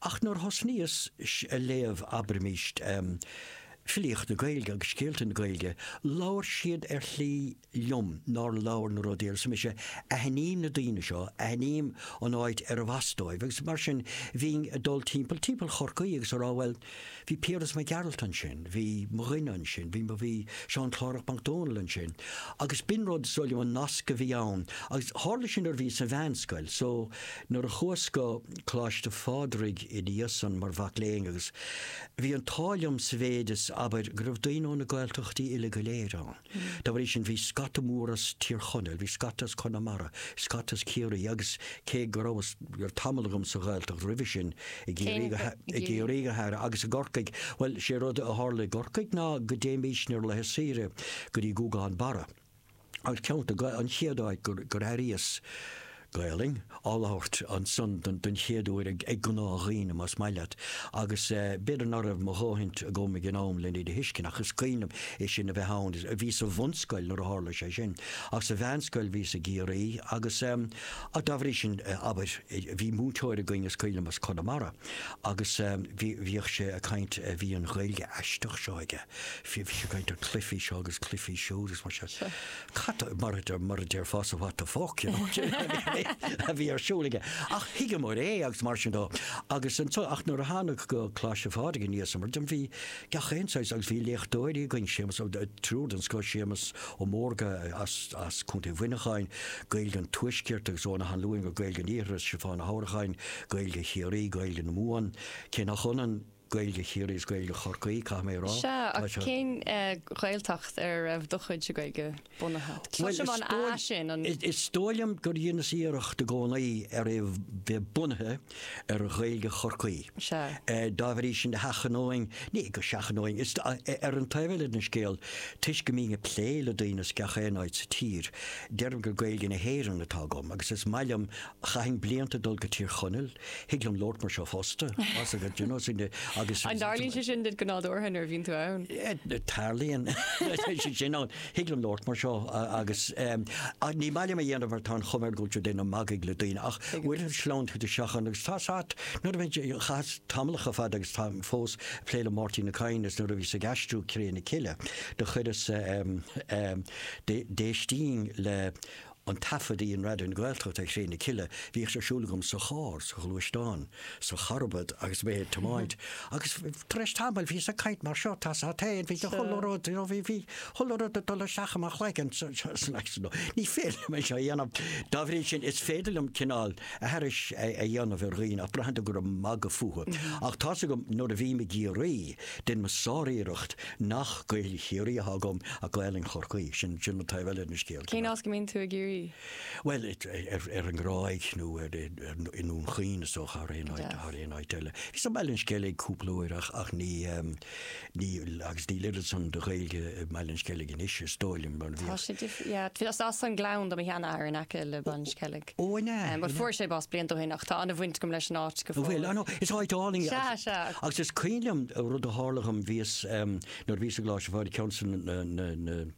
Ach nuair a thosnaíos a léamh abraimís, filíocht na Gaeilge agus scéalta na Gaeilge, labhair siad ar shlí liom nár labhair na rudaí arsa mise, aithním na daoine seo, aithním an áit arbh as dóibh agus mar sin bhínn ag dul timpeall, timpeall Chorcaí agus ag rá bhuel, Bhí Piaras Mac Gearailt ansin, bhí mo dhuine ansin, bhí mo, bhí Seán Clárach Mac Dónaill ansin agus b'in rud, is dóigh liom, an nasc go bhí ann agus tharla sé nuair a bhíos sa mheánscoil so nuair a chuas go Coláiste Phádraig i ndiaidh san mar mhac léinn agus bhí an t-ádh liom sa mhéid is, abair, go raibh daoine ó na Gaeltachtaí uile go léir ann. Dá bhrí sin bhí scata mór as Tír Chonaill, bhí scata as Conamara, scata as Ciarraí agus cé go rabhas, raibh tamall agam sa Ghaeltacht roimhe sin, i gCiarraí go, i gCiarraí go háirithe agus i gCorcaigh, bhuel 'sé rud a tharla i gCorcaigh ná go dtéimís ar laetha saoire go dtí Guagán Barra agus ceann, an chéad áit gur airíos, Gaolainn á labhairt ansan don chéad uair ag gnáthdhaoine, más maith leat, agus b'fhéidir ná raibh mo dhóthaint agam ag an am len iad a thuiscint, ach is cuimhin liom é sin a bheith ann. Bhíos sa bhunscoil nuair a tharla sé sin, ach sa mheánscoil bhíos i gCiarraí agus dá bhrí sin, abair, bhí múinteoir againn, Mac Coilm, as Conamara, agus bhíodh sé ag caint, bhí an Ghaeilge aisteach seo aige, bhí sé ag caint ar cluifí seo agus cluifí siúd agus mar sin. Cad mar a mar a déarfása what the fuck you know a bhí ar siúl aige. Ach thuigeamar é agus mar sin de agus anso ach nuair a thánag go Coláiste Phádraig i ndiaidh san ar ndóigh bhí gach aon saghas agus bhí léachtóirí againn Séamus ó triúr den scoth Séamus Ó Mórdha as as Contae Mhuineacháin Gaeilge an Tuaiscirt agus Eoghan Ó hAnluain ó Gaeilge an Iarthair is Stiofán Ó hAnnracháin Gaeilge Chiarraí Gaeilge na Mumhan cé nach ionann Gaeilge Chiarraí is Gaeilge Chorcaí, caithfidh mé a rá. Sea, ach cén Ghaeltacht ar a raibh do chuid Gaeilge bunaithe? Tá sé mar an, á, sin an. Is dóigh liom gur dheineas iarracht i gcónaí ar é bheith bunaithe ar Ghaeilge Chorcaí. Sea. Dá bhrí sin sheachnóinn, ní go seachnóinn, is ar an taobh eile den scéal, toisc go mbínn ag plé le daoine as gach aon áit sa tír, deirim gur Gaeilge na hÉireann atá agam, agus is maith liom, chaithinn blianta ag dul go Tír Chonaill, Thig liom labhairt mar seo fosta. An dtarlaíonn sé sin duit go nádúrtha nuair a bhíonn tú ann? Tarlaíonn sé sin ann. Thig liom labhairt mar seo agus ní maith liom a dhéanamh mar tá an chuma air go bhfuil tú ag déanamh magadh le daoine ach bhfuil a fhios, sleamhnaíonn tú isteach ann agus tá a fhios agat nuair a bhínnse, chaitheas tamall a chomh fada agus táim fós ag plé le Máirtín Ó Cadhain is nuair a bhíos ag aistriú Cré na Cille do chuireas déistín le An taifead a dhein Raidió na Gaeltachta ar Chré na Cille. Bhíodh sé ar siúl agam sa charr, sa ghluaisteán, sa charbad agus mé ag tiomáint. Agus tar éis tamaill bhíos ag caint mar seo, tá's a't fhéin, bhí chuile rud, you know, bhí bhí chuile rud ag dul isteach i mo chloigeann so it's nice to know. Ní féidir liom é seo a dhéanamh. Dá bhrí sin is féidir liom cineál aithris a dhéanamh ar dhaoine ach braitheann tú gur ag magadh fúthu. Ach tá's agam nuair a bhím i gCiarraí, Déanaim mo sár-iarracht nach Gaolainn Chiarraí atá agam ach Gaolainn Chorcaí, sin an taobh eile den scéal. Cén áit go mbíonn tú i gCiarraí? Bhuel, ar an nGráig nó i nDún Chaoin is dócha thar aon áit eile. Bhíos i mBaile an Sceilg cúpla uair ach agus níl oiread san de Ghaeilge i mBaile an Sceilg anois is dóigh liom. Tá sé difriúil. Is as an Gleann do mo sheanathair in aice le Baile an Sceilg. Pádraic. Ó, an ea? Bhuel, fuair sé bás blianta ó shin ach tá an-bhaint agam leis an áit go fóill. An bhfuil? Ó, no, is áit álainn í. Sea, sea. Agus is cuimhin liom rud a tharla dhom, bhíos, nuair a bhíos i gColáiste Phádraig, ceann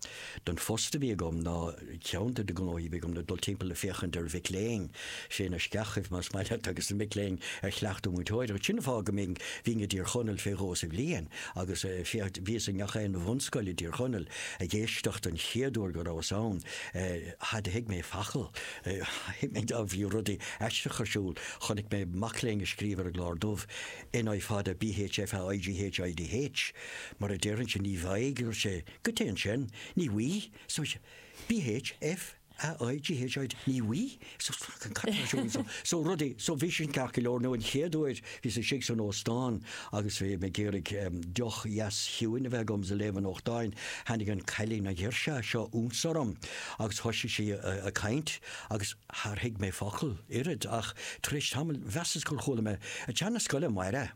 den phost a bhí agam ná, ceann de na gnóthaí a bhí agam ná dul timpeall ag féachaint ar mhic léinn, sna sceachaibh más maith leat, agus na mic léinn ar chleachtadh múinteoireacht. Sin an fáth go mbínn, bhínn i dTír Chonaill fé dhó sa bhliain agus, sea, bhíos i ngach aon bhunscoil i dTír Chonaill ag éisteacht an chéad uair go rabhas ann, Char thuig mé focal. Thuig mé go bhí rudaí aisteacha ar siúl. Chonaic mé mac léinn ag scríobh ar an gclár dubh NI fada BH FA IGH IDH mar a déarfainnse, ní bhfaighidh, dúirt sé, go téann sin, ní bhfuighidh, so BH FA IGH ID ní bhfuighidh, so cad atá ar siúl anseo? So rudaí, so bhí sin ceart go leor nó an chéad uair, Bhíos istigh san óstán agus bhí mé ag iarraidh deoch dheas chiúin a bheith agam is ag léamh an nuachtáin. Tháinig an cailín an ghirseach seo ionsorm agus thoisigh sí ag caint agus char thuig mé focal, oiread ach tar éis tamaill mheasas gur chuala mé, ag teacht 'na scoile amárach!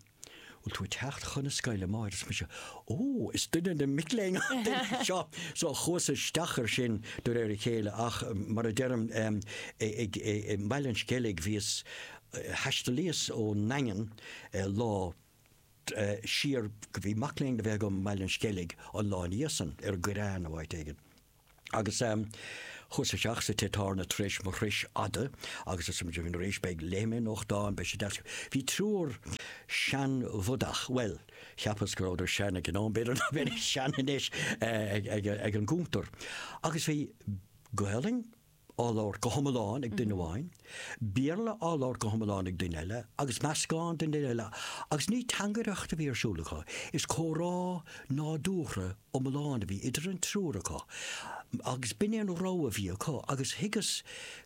Bhfuil tú ag teacht chun na scoile, amárach? Arsa mise, Ó, is duine de na mic léinn an duine seo! So chuas isteach ar sin de réir a chéile ach mar a deirim i mBaile an Sceilg bhíos, Thaistealaíos ón nDaingean lá siar, bhí mac léinn le bheith agam i mBaile an Sceilg an lá ina dhiaidh san, ar an gCoireán nó áit éigin. Agus chuas isteach sa tigh tábhairne tar éis mo thruis fhada agus arsa mise, arís, beidh, léifidh mé nuachtán, beidh sé deas. Bhí triúr seanbhodach, bhuel, cheapas go rabhadar sean ag an am, b'fhéidir nach mbeidís sean anois, ag an gcuntar. Agus bhí Gaolainn? á labhairt go hiomlán ag duine amháin, Béarla á labhairt go hiomlán ag duine eile, agus meascán de dhuine eile, agus ní teangaireacht a bhí ar siúl acu, is comhrá nádúrtha iomlán a bhí idir an triúr acu, agus b'in é an rogha a bhí acu, agus thuigeas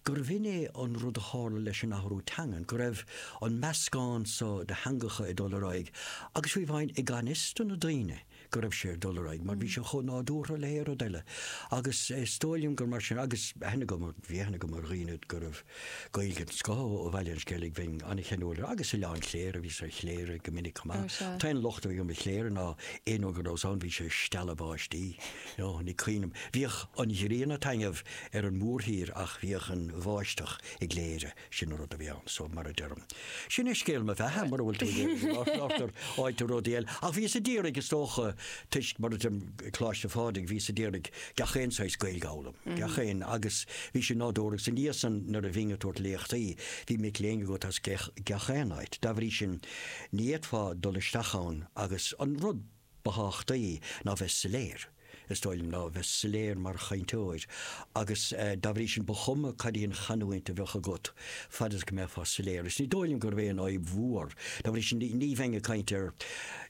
gurbh in é an rud a tharla leis an athrú teangan, go raibh an meascán seo de theangacha ag dul ar aghaidh, agus fiú amháin i ganfhios do na daoine. go raibh sé ag dul ar aghaidh mar bhí sé chomh nádúrtha le haon rud eile agus is dóigh liom gur mar sin agus aithne agam, bhí aithne agam ar dhaoine go raibh Gaeilge den scoth acu ó Bhaile an Sceilg, bheinn an-cheanúil ar agus Oileán Chléire, bhíos i gCléire go minic chomh maith. Tá sé. An locht a bhí agam ar Chléire ná aon uair go rabhas ann bhí sé ag stealladh báistí, ó, ní cháinim, bhíodh an ghrian ag taitneamh ar an mhórthír ach bhíodh an bháisteach i gCléire. Sin an rud a bhí ann, so mar a deirim. Sin é scéal mo bheatha, mura bhfuil tú ag iarraidh go labharfainn ar rudaí eile. Ach bhíos ag iarraidh, is dócha, toisc, mar a deirim, Coláiste Phádraig, bhíos ag iarraidh gach aon saghas Gaeilge a fhoghlaim, gach aon, agus bhí sin nádúrtha. Agus ansan, nuair a bhínn ag tabhairt léachtaí, bhí mic léinn agat as gach aon áit. Dá bhrí sin, ní fhéadfá dul isteach ann agus an rud. Ba thábhachtaí ná bheith soiléir, is dóigh liom, ná bheith soiléir mar chainteoir agus dá bhrí sin ba chuma cad í an chanúint a bheadh agat, fad is go mbeifeá soiléir. Is ní dóigh liom gurb é sin an fhadhb mhór. Dá bhrí sin ní bheinn ag caint ar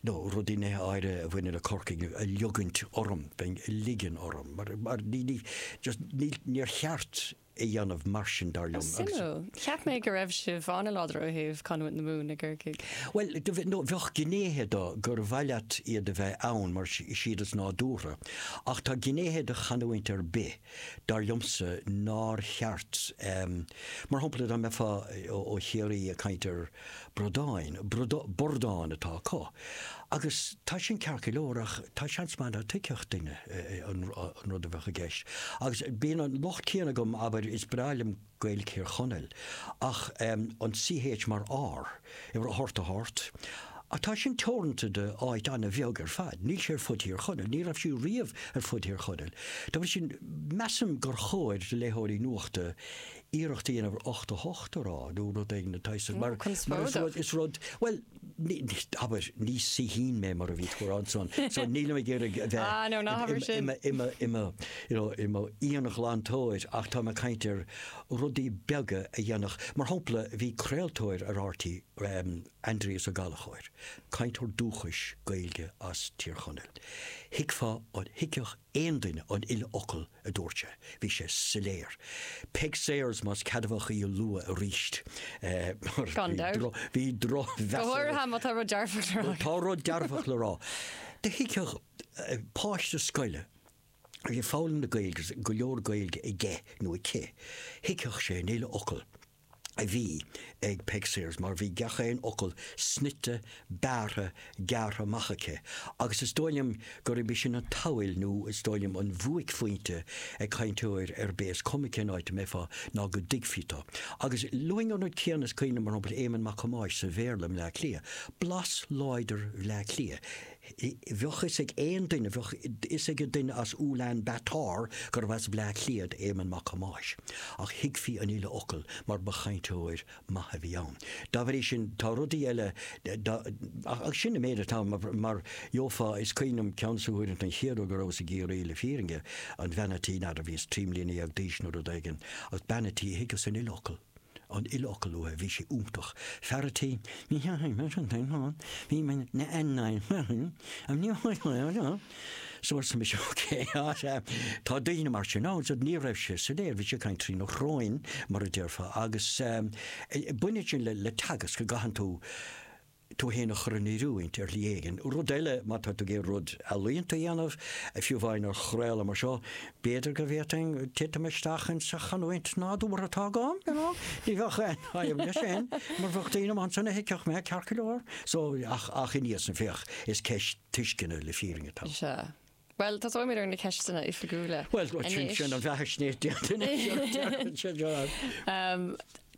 nó rudaí nithe áirithe a bhaineann le Corcaigh a ligint orm, bheinn a ligean orm mar ní just níor cheart. a dhéanamh mar sin dar liom. Suimiúil. Cheap mé go raibh sibh an-láidir ó thaobh chanúint na Mumhan i gCorcaigh. Bhuel, bheadh gnéithe de gur mhaith leat iad a bheith ann mar is iad is nádúrtha ach tá gnéithe de chanúint ar bith dar liomsa nár cheart mar shampla dá mbeifeá ó Chiarraí ag caint ar Bradáin, bordáin, bordáin atá acu. Agus tá sin ceart go leor ach tá seans maith ná tuigfeadh duine an rud a bheadh i gceist. Agus bíonn an locht céanna agam, abair, is breá liom Gaeilg Thír Chonaill, ach an CH mar R, i leith ort a hort. Ach tá sin teoranta do áit an-bheag ar fad. Níl sé ar fud Thír Chonaill, ní raibh sé riamh ar fud Thír Chonaill. Dá bhrí sin, measaim gur chóir do léitheoirí nuachta iarracht a dhéanamh ar ocht, ocht a rá nó rud éigin atá is mar is rud bhuel abair ní saoithín mé mar a bhí tú a rá ansan so nílim ag iarraidh a bheith i mo íonghlantóir ach táim ag caint ar rudaí beaga a dhéanfadh mar shampla bhí craoltóir ar RTÉ Aindrias Ó Gallchóir cainteoir dúchais Gaeilge as Tír Chonaill thuigfeá an thuigfeadh Aon duine an uile fhocal a dúirt sé. Bhí sé soiléir. Peig Sayers, más ceadmhach í a lua arís. Gan dabht. Bhí drochmheas ar. Go háirithe má tá rud dearfach le rá. Tá rud dearfach le rá. Thuigfeadh páiste scoile a bhí ag foghlaim na Gaeilge agus go leor Gaeilge aige nó aici, thuigfeadh sé an uile fhocal. a bhí ag Peig Sayers mar bhí gach aon fhocal snoite, bearrtha, gearrtha amach aici agus is dóigh liom gurb í sin an tsamhail nó is dóigh liom an buaicphointe ag cainteoir ar bith, is cuma cén áit a mbeifeá, ná go dtuigfí tú. Agus luaim an rud céanna is cuimhin liom, mar shampla, Éamonn Mac Thomáis sa Bhéarla i mBleá Cliath, blas láidir Bhleá Cliath. Bheadh fhios ag aon duine, bheadh fhios ag duine as Ulaan Bataar gurbh as Bleá Cliath Éamonn Mac Thomáis, ach thuigfí an uile fhocal mar ba chainteoir maith a bhí ann. Dá bhrí sin, tá rudaí eile, ach sin an méid atá ann. Mar gheofá, is cuimhin liom ceann de na huaireanta, an chéad uair go rabhas i gCiarraí, le fírinne, an bhean a' tí, n'fheadar, bhíos trí mbliana dhéag d'aois nó rud éigin, ach bean a' tí, thuigeas an uile fhocal. an uile fhocal uaidh, bhí sé iontach. Fear a' tí, ní theachaigh mé sin féin ann, bhí mé na an na an an ní so arsa mise ok á tá daoine mar sin ann so ní raibh sé soiléir bhí sé ag caint trína shrón mar a déarfá agus baineann sin le teagasc go gcaitheann tú tú fhéin a chur in oiriúint ar shlí éigin. Rud eile, má tá tú ag iarraidh rud ealaíonta a dhéanamh, fiú amháin ar chraoladh mar seo, b'fhéidir go bhféadfainn titim isteach insa chanúint nádúrtha atá agam, you know? Ní bheadh aon fhadhb leis sin, mar bheadh daoine ann ansan a thuigfeadh mé, ceart go leor. So, ach, ach i ndiaidh san, féach, is ceist tuisceana le fírinne atá ann. Bhuel, tosóimid ar na ceisteanna oifigiúla. Bhuel, sin sin an bheathaisnéis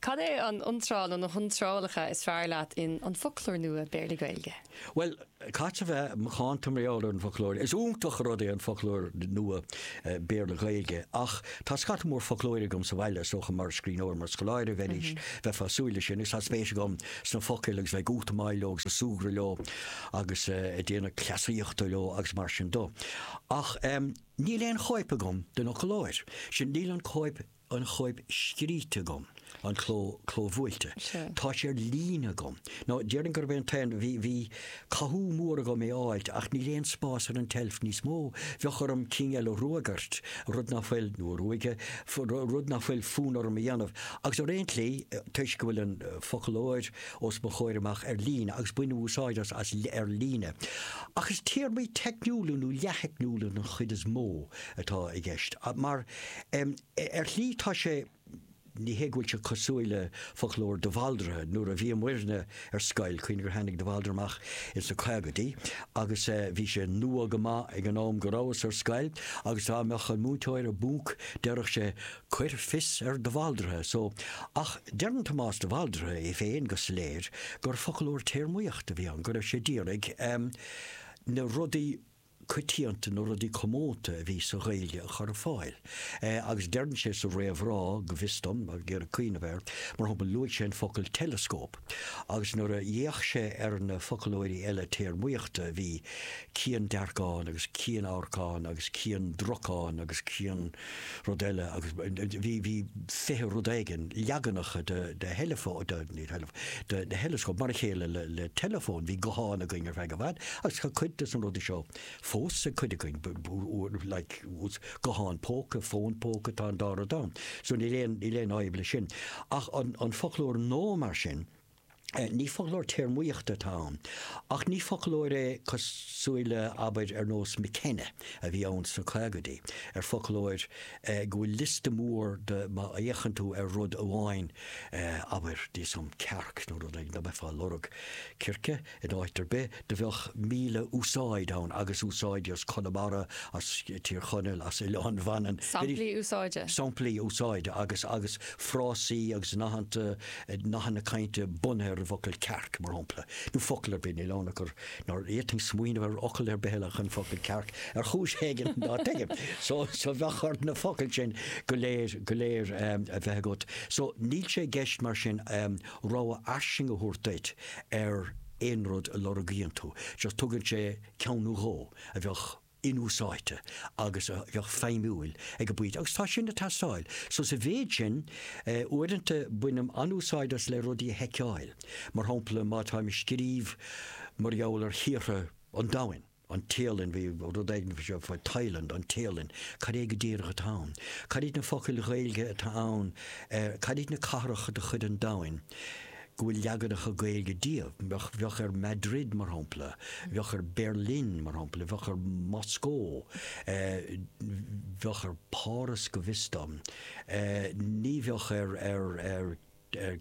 Cad é an iontráil nó na hiontrálacha is fearr leat in An Foclóir Nua Béarla-Gaeilge? Bhuel, caithfead a bheith macánta mar gheall ar an bhfoclóir. Is iontach an rud é an foclóir nua Béarla-Gaeilge ach tá scata mór foclóirí agam sa bhaile, is dócha mar scríbhneoir, mar scoláire a bheidís, bheifeá ag súil leis sin, agus tá spéis agam sna focail agus bheith ag útamáil leo agus ag súgradh leo. agus ag déanamh cleasaíochta leo agus mar sin dó. Ach em, níl aon chóip agam den fhoclóir sin, níl an cóip, an chóip scríte agam, an cló, clóbhuailte. Sure. Tá sé ar líne agam. Nó déarfainn gurb é an t-aon, bhí, bhí cathú mór agam é a fháilt ach níl aon spás ar an tseilf níos mó, bheadh orm cinn eile a ruagairt, rud nach bhfuil, nó a ruaigeadh, rud nach bhfuil fonn orm a dhéanamh. Agus ar aon tslí, toisc go bhfuil an foclóir, os mo chomhair amach ar líne agus bainim úsáid as as ar líne. Ach is téarmaí teicniúla nó leath-theicniúla den chuid is mó atá i gceist. Mar, em, ar shlí tá sé, ní hé go bhfuil sé cosúil le foclóir de Bhaldraithe, nuair a bhí muidne ar scoil, cuimhnigh gur tháinig de Bhaldraithe amach ins na caogaidí agus, eh, bhí sé nua go maith ag an am go rabhas ar scoil agus dá mbeadh an múinteoir i bponc déarfadh sé, Cuir fios ar de Bhaldraithe so. Ach deireann Tomás de Bhaldraithe é féin go soiléir gur foclóir téarmaíochta a bhí ann, go raibh sé d'iarraidh na rudaí coitianta, na rudaí comónta a bhí sa Ghaeilge a chur ar fáil. Agus deireann sé sa réamhrá, go bhfios dom, ag iarraidh cuimhneamh air, mar shampla, luaigh sé an focal teileascóp. Agus nuair a d'fhéach sé ar na foclóirí eile téarmaíochta bhí ciandearcán agus cianamharcán agus ciandracán agus cian. rud eile agus bhí, bhí fiche rud éigin, leaganacha de, de theileafón, de, ní theileafón, de, de theileascóip, mar a chéile le, le teileafóin, bhí gutháin againn ar feadh i bhfad agus tá cuid de na rudaí seo fós ag cuid againn, like, guthán póca, fón póca, tá an dá rud ann. So níl aon, níl aon fhadhb leis sin. Ach an, an foclóir No mar sin, Ní foclóir téarmaíochta atá ann, ach ní foclóir é cosúil le, abair, ar nós McKenna a bhí ann sna caogaidí, ar foclóir go bhfuil liosta mór de má fhéachann tú ar rud amháin, abair, níl a fhios agam, cearc nó rud éigin, go mbeifeá ag lorg circe. In áit ar bith, do bheadh míle úsáid ann agus úsáidí as Conamara, as Tír Chonaill, as Oileán Mhanann. Samplaí úsáide. Samplaí úsáide agus agus frásaí agus nathanta, nathanna cainte bunaithe ar an bhfocal cearc, mar shampla. Nó focal ar bith, níl ann ach gur, nár fhéadfainn smaoineamh ar fhocal ar bith eile ach an focal cearc, ar chúis éigin ná tuigim. So so bheadh ort na focail sin go léir go léir a bheith agat. So níl sé i gceist mar sin rogha fhairsing a thabhairt duit ar aon rud a lorgaíonn tú, just tugann sé ceann nó dhó a bheadh inúsáidte agus a bheadh feidhmiúil ag an bpointe agus tá sin ag teastáil. So sa mhéid sin, uaireanta bainim an-úsáid as le rudaí a sheiceáil, mar shampla má táim ag scríobh mar gheall ar thíortha an domhain, an Téalainn, bhí rud éigin faoi seo, faoi Thailand, an Téalainn, cad é go díreach atá ann? Cad iad na focail Gaeilge atá ann ar, cad iad na cathracha de chuid an domhain go bhfuil leaganacha Gaeilge díobh? Bheadh ar Madrid, mar shampla, bheadh ar Berlin, mar shampla, bheadh ar Mhoscó, bheadh ar Páras go bhfios dom, ní bheadh ar, ar, ar.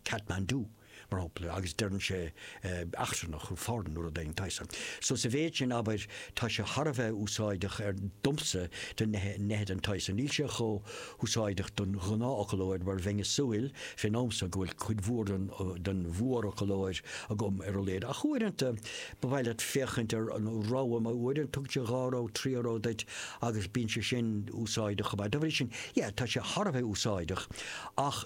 Kathmandu, mar shampla, agus deireann sé eachtrannach, foreign nó rud éigin den tsaghas san. So sa mhéid sin, abair, tá sé thar a bheith úsáideach ar, domsa, do neithe den tsaghas san. Níl sé chomh húsáideach don ghnáthfhoclóir mar bheinn ag súil, fén am so, go bhfuil cuid mhór den mhórfhoclóir agam ar a laghad. Ach uaireanta ba mhaith leat féachaint ar an rogha, mar uaireanta tugann sé dhá rogha, trí rogha duit agus bíonn sé sin úsáideach chomh maith. Dá bhrí sin, yeah, tá sé thar a bheith úsáideach ach.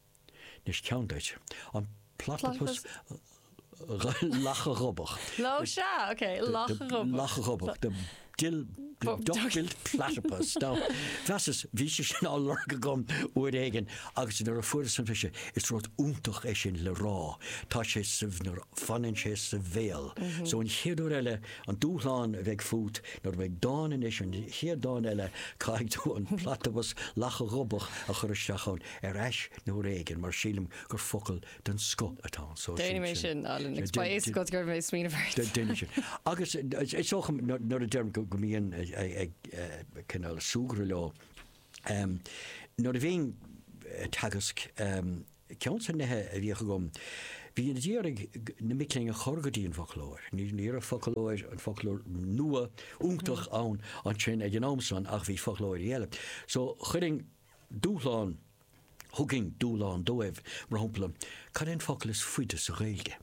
Anois ceann duit. An platapas lacha ghobach. Lá sea, ok, lacha ghobach. Lacha ghobach, the dill, the duck-billed platypus. Now, mheasas, bhí sé sin á lorg agam uair éigin agus nuair a fuaireas ambaiste, is rud iontach é sin le rá, tá sé sa, nuair a fanann sé sa bhéal. So an chéad uair eile, an dúshlán a bheidh fút, nuair a bheidh dán anois, an chéad dán eile, caithfidh tú an platapas lacha ghobach a chur isteach ann. ar ais nuair éigin mar sílim gur focal den scoth atá ann. So déanfaidh mé sin Alan, agus ba éasca go raibh mé smaoineamh ort. Déanfaidh sin. Agus is dócha nuair a deirim go mbím ag cineál súgradh leo, nuair a bhínn ag teagasc, ceann des na nithe a bhíodh agam, bhínn ag iarraidh na mic léinn a chur go dtí an bhfoclóir. Ní raibh foclóir, an foclóir nua iontach ann ansin ag an am san ach bhí foclóirí eile. So chuirinn, Dúshlán, thugainn dúshlán dóibh, mar shampla, cad é an focal is faide sa Ghaeilge?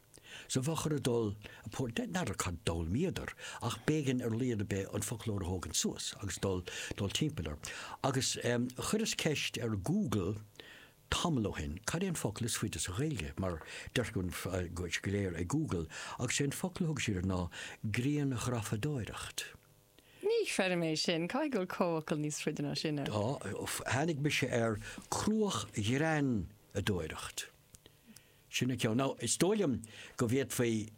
Sa bhfoclóir a dul, a port, de, n'fheadar cad d'fhoghlaimíodar, ach b'éigean ar laghad ar bith an foclóir a thógaint suas agus dul, dul timpeall air. Agus chuireas ceist ar Google tamall ó shin, cad é an focal is faide sa Ghaeilge? Mar deirtear go bhfuil sé go léir ag Google, agus is é an focal a thug siad ná grianghrafadóireacht. Ní chreidim é sin. Caithfidh go bhfuil comhfhocal níos faide ná sin ann. Tháinig mise ar cruachghreanadóireacht. Sin an ceann. Nó is dóigh liom go bhféadfaí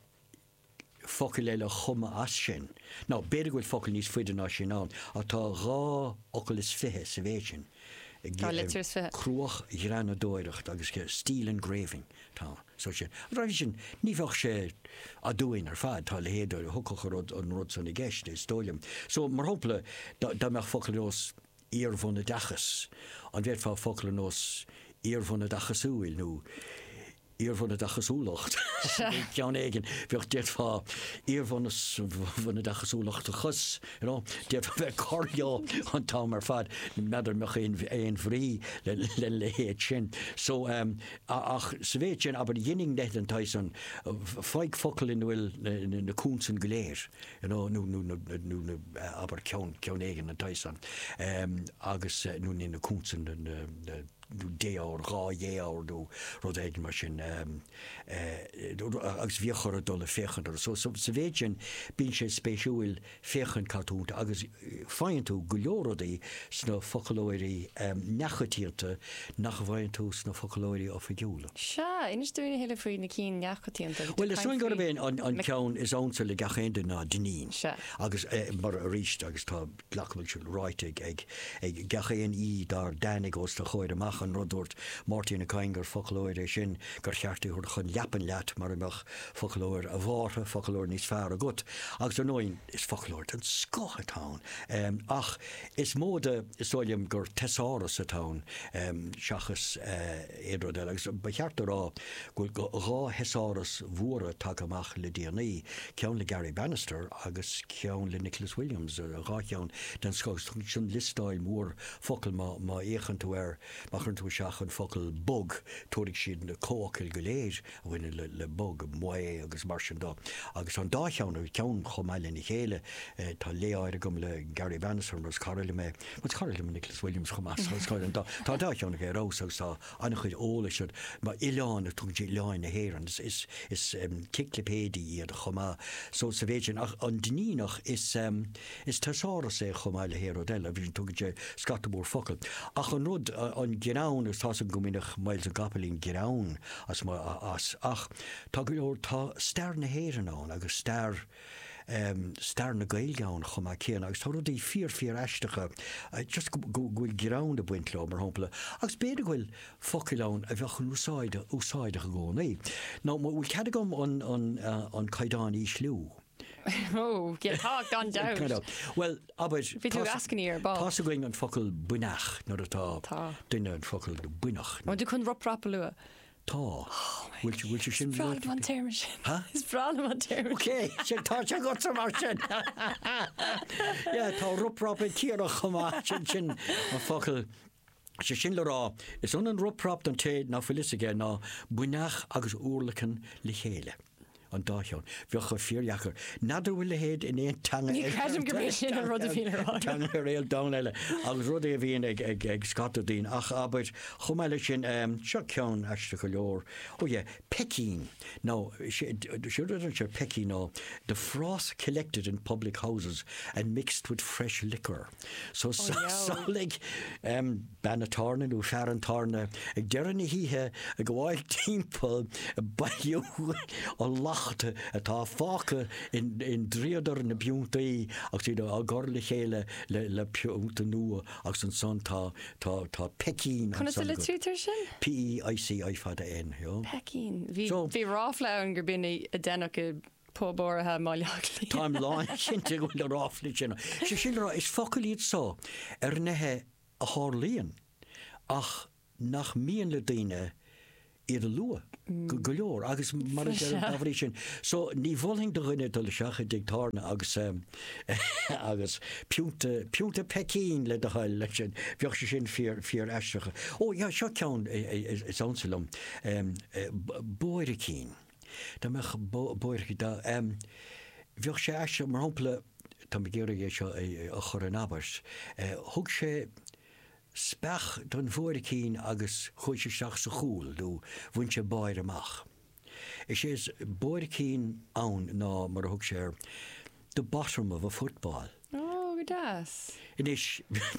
focail eile a chumadh as sin. Nó b'fhéidir go bhfuil focal níos faide ná sin ann. Ach tá dhá fhocal is fiche sa mhéid sin. Dhá litir is fiche. Cruachghreanadóireacht agus steel engraving. Tá, so sin. Ar ndóigh sin, ní bheadh sé aduain ar fad, tá a leithéid d'fhocal, an rud, an rud san i gceist, is dóigh liom. So, mar shampla, dá, dá mbeadh focal ar nós iarbhunoideachas, an bhféadfá focal ar nós iarbhunoideachasúil nó iarbhunoideachasúlacht, chineál éigin, bheadh, d'fhéadfá iarbhunos, bhunoideachasúlachtachas, you know, d'fhéadfá bheith ag cur leo an t-am ar fad, n'fheadar an mbeadh aon, aon bhrí le, lena leithéid sin. So, ehm. a Ach sa mhéid sin, abair, deirinn leo den tsaghas san, faigh focal ina bhfuil na consain go léir, you know, nó, nó na, nó na, abair, ceann, ceann éigin den tsaghas san, agus, nó níl na consain, na, na, na, nó défhoghar, dhá dhéfhoghar nó rud éigin mar sin, agus bhíodh orthu dul ag féachaint orthu. So, sa mhéid sin, bíonn sé spéisiúil. féachaint cad tá iontu agus faigheann tú go leor rudaí sna foclóirí neamhchoitianta nach bhfaigheann tú sna foclóirí oifigiúla. Sea, inis dúinn a thuilleadh faoi na cinn neamhchoitianta. Bhuel, is dóigh gurb é an ceann is ansa le gach aon duine ná Dinneen. Sea. Agus mar, arís, agus tá, glacaim leis, seo, ráite ag gach aon aoi dár dtáinig os do chomhair amach an rud a dúirt Máirtín Ó Cadhain gur foclóir é sin gur cheart é a thabhairt chun leapan leat mar a bheadh Foclóir, a Bhártha, foclóir níos fearr agat, agus ar ndóigh is foclóir den scoth atá ann, ach is mó de, is dóigh liom, gur teasáras atá ann seachas aon rud eile, agus ba cheart a rá go bhfuil dhá theasáras mhóra tagtha amach le déanaí, ceann le Garry Bannister agus ceann le Nicholas Williams, dhá cheann den scoth, agus tugann siad liostáil mhór focal, má fhéachann tú air, má chuireann tú isteach an focal bog, tabharfaidh siad na comhfhocail go léir. bhaineann le bog, maoth agus mar sin de. Agus tá an dá cheann acu, ceann chomh maith lena chéile. Tá lé áirithe agam le Garry Bannister mar is cara liom é. Ach is cara liom Nicholas Williams chomh maith. Tá an dá cheann acu ar fheabhas agus tá an-chuid eolais agat. Mar oileán, is tugann sé oileáin na hÉireann, is ciclipéidí iad chomh maith. So sa mhéid sin. Ach an Duinníneach, is. Is teasáras é chomh maith le haon rud eile, vision, tugann sé scata mór focal. Ach an rud, an greann, is tá's againn go mbaineadh Myles na gCopaleen greann as, as, ach tá go leor, tá stair na hÉireann ann agus stair em, stair na Gaeilge ann chomh maith céanna agus tá rudaí fíor, fíor aisteacha just go, go bhfuil greann ag baint leo, mar shampla, agus b'fhéidir go bhfuil focail ann a bheadh in úsáid, úsáideach i gcónaí. Now, an bhfuil cead agam an, an, an caighdeán a ísliú? Oh, yeah, tá, gan dabht. Gan dabht. Bhuel, abair, Bhí tú ag eascainí ar ball. tá's againn an focal buinneach nuair atá Tá. duine an focal buinneach. An bhfuil tú chun rop rap a lua? Tá. Bhfuil tú, bhfuil tú sin Bhreá liom an téarma sin. Ha? Is breá liom an téarma Ok, sin, tá sé agatsa mar sin. Yeah, tá rop rap ag Ciara chomh maith, sin, sin an focal. Sé sin le rá, is ionann rop rap don té ná fuil fhios aige ná buinneach agus urlacan le chéile. an dá cheann. Bheadh sé fíordheacair. N'fheadar bhfuil a leithéid in aon teanga eile. Ní chreidim go bith sin an rud a bhíonn ar an. Teanga ar an domhan eile agus rud é a bhíonn ag, ag, ag scata daoine. Ach, abair, chomh maith leis sin, seo ceann aisteach go leor. Oh yeah, peicín. Nó, sé rud a deireann sé peicín nó the froth collected in public houses and mixed with fresh liquor. So, Oh, yeah. samhlaigh, em, Bean an tábhairne nó fear an tábhairne ag deireadh na hoíche ag gabháil timpeall ag bailiú an leachta atá fágtha i ndríodar na bpiontaí agus iad á gcur le chéile le pionta nua agus ansan tá peicín Conas a litrítear sin? P-e-i-c-i fada N. Peicín. Bhí ráfla ann gurb in a deineadh i bpub áirithe i mBaile Átha Cliath. Táim lánchinnte go bhfuil na ráflaí sin ann. Sea, sin rud, is focail iad so ar nithe a tharlaíonn ach nach mian le daoine iad a lua go leor agus mar a deirim dá bhrí sin so ní mholfainn do dhuine dul isteach i dtigh tábhairne agus agus piúnta piúnta peicín le do thoil leis sin bheadh sé sin fíor fíor aisteach. Ó, yeah, seo ceann is ansa liom, bóiricín. Dá mbeadh buairc, dá, bheadh sé aisteach, mar shampla, táim ag iarraidh é seo a chur in abairt, thug sé speach don bhuaircín agus chuaigh sé isteach sa chúl nó bhain sé báire amach. Is é is buaircín ann ná, mar a thug sé air, the bottom of a football. Ó, go deas. Anois,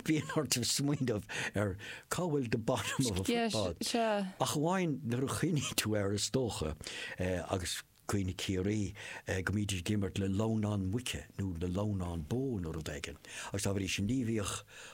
bíonn ort smaoineamh ar cá bhfuil the bottom of a football. Yes, sea. Ach amháin nuair a chuimhníonn tú air, is dócha, agus cuimhne Ciarraí, go mbídís ag imirt le lamhnán muice nó le lamhnán bó nó rud éigin. Agus dá bhrí sin ní bhíodh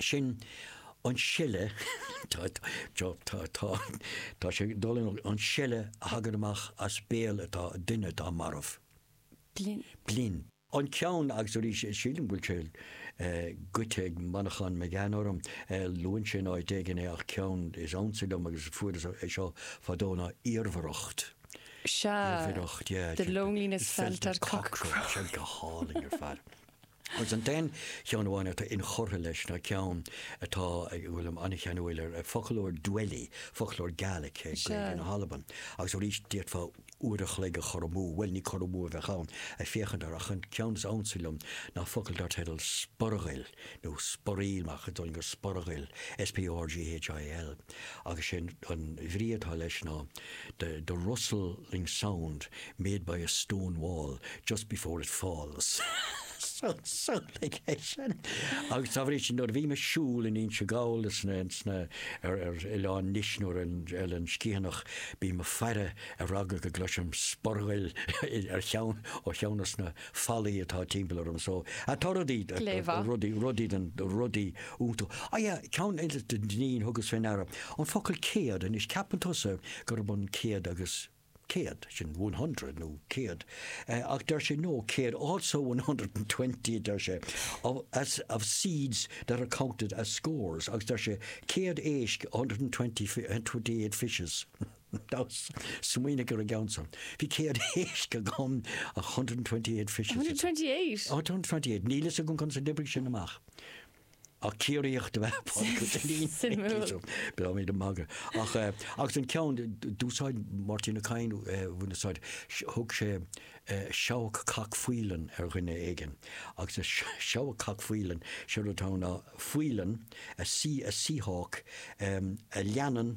Sin an seile, tá, tá, tá, tá, tá sé ag dul in olcas, an seile a thagann amach as béal atá, duine atá marbh. Blinn. Blinn. An ceann, agus arís, sílim go bhfuil sé goidte ag Manchán Magan orm, luann sé in áit éigin é ach ceann is ansa liom agus fuaireas é seo fadó ná iarmhaireacht. Sea, the loneliness felt at cockcrow. Sea, go hálainn ar fad. Agus an t-aon cheann amháin atá inchurtha leis ná ceann atá, go bhfuilim an-cheanúil air, Foclóir Dwelly, foclóir Gaelic, Gaeilge na hAlban. Agus arís, d'fhéadfá uair an chloig a chur amú, bhuel, ní cur amú a bheadh ann, ag féachaint air, ach an ceann is ansa liom ná focal dar teideal 'Sporghail' nó 'Sporaill', ach a d'fhulaing go Sporghail, S-P-O-R-G-H-A-I-L. agus sé an bhrí atá leis ná the the rustling sound made by a stone wall just before it falls so so like é sin agus dá bhrí sin nuair a bhím ag siúl in Inse Gall is na is na ar ar oileán Nis nó ar an Oileán Sciathanach bím ag faire ar eagla go gcloisim sporghail ar cheann ó cheann dos na fallaí atá timpeall orm so atá rudaí Gleoite. rudaí rudaí den rudaí iontu ah yeah ceann eile den thugas fé ndeara an focal céad anois ceapann tusa gurb an céad agus céad sin one hundred nó céad eh ach deir sé no céad also one hundred and twenty a deir sé of as of seeds that are counted as scores agus deir sé céad éisc a hundred and twenty fi- and twenty eight fishes. Smaoinigh ar an gceann seo. Bhí céad éisc agam, one hundred and twenty eight fishes. one hundred and twenty eight? One hundred and twenty eight. Níl a fhios agam conas a d'oibrigh sin amach. Ach Ciarraíoch do bheith páirteach go dtí. Suimiúil. Beidh mé do magadh. Ach agus an ceann d'úsáid Máirtín Ó Cadhain bhuel d'úsáid thug sé seabhac cac faoileann ar dhuine éigin agus a seabhac cac faoileann sé rud atá ann ná faoileann a sea a sea hawk a leanann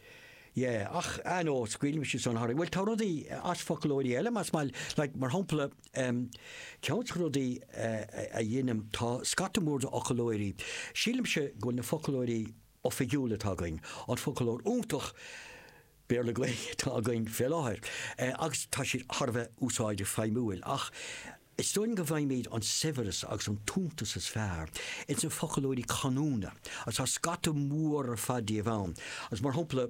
Yeah, ach I know, scaoilimis é san tharainn. Bhuel tá rudaí as foclóirí eile más maith leat like mar shampla um ceann de rudaí uh a dheinim tá scata mór de fhoclóirí sílimse go bhfuil na foclóirí oifigiúla atá againn an foclóir iontach Béarla Gaeilge atá againn fé láthair uh agus tá siad thar a bheith úsáideach feidhmiúil ach Is dóigh liom go bhfaighimid an saibhreas agus an t-iontas is fearr ins na foclóirí canúna, agus tá scata mór ar fad díobh ann, agus mar shampla,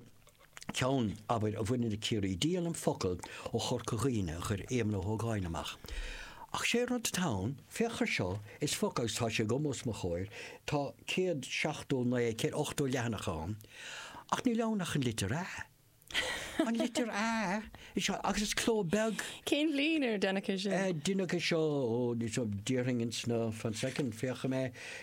ceann, abair, a bhaineann le Ciarraí, díolaim focal ó Chorca Dhuibhne a chuir Éamonn Ó hÓgáin amach. Ach sé rud atá ann, féach ar seo, is focal, agus tá sé agam os mo chomhair, tá céad seachtó naoi, céad ochtó leathanach ann, ach níl ann ach an litir 'a'. An litir A is ea agus is cló beag. Cén bhliain ar deineadh é seo? Ar deineadh é seo ó ní so déarfainn ins na fan soicind féachfaidh mé